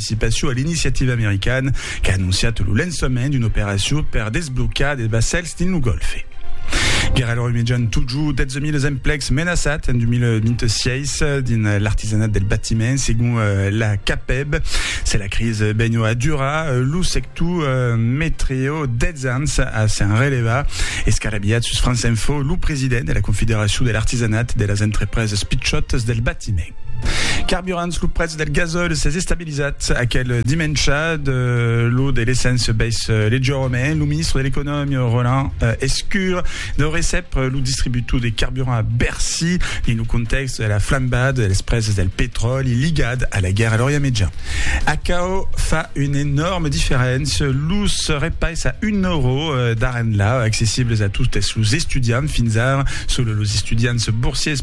participacion a l'iniciativa americana qu'a anonciat lo lançament d'una operacion per desblocar de vassèls dins lo Gòlfe. Guèrra lor imejan totjorn 12.000 emplecs menaçats en 2026 dins l'artisanat del batiment, segon la CAPEB. Se la crisi benho a durar, lo sector metreo 10 ans a s'en relevar. Escarabilhat sus France Info, lo president de la Confederacion de l'artisanat de las entrepresas pichòtas del batiment, Dimenge. Carburants, lo prètz del gasòl s'es estabilizat aquel dimèncha, de lo de l'essence bais leugièrament. Lo ministre de l'Economia, Roland Lescure, deu recep lo distributor de carburant a Bercy dins lo contèxt de la flambada de las prèses del petròli ligat a la guèrra a l'Orient Mejan. Aquò fa una enòrma diferéncia, los repais a un euro d'ara enlà accessibles a totes los estudiants fins ara, solo los estudiants borsiers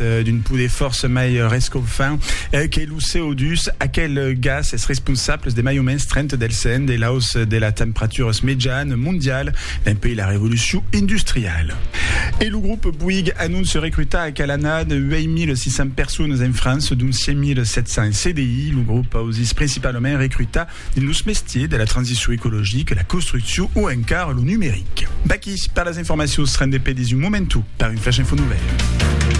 d'un poder fòrça mai rescofant que lo CO2, aquel gas es responsable de mai o mens 30 del cent de l'aus de la temperaturas mejan mondial dempuèi la revolucion industriala. E lo grop Bouygues anonce recrutar a Calanat 8.600 personas en França, dont 5.700 en CDI. Lo grop ausís principalament recrutar dins los mestiers de la transicion ecologica, la construccion o encara lo numeric. Vaquí per las informacions rendepedis un momentu per un flash info novèl.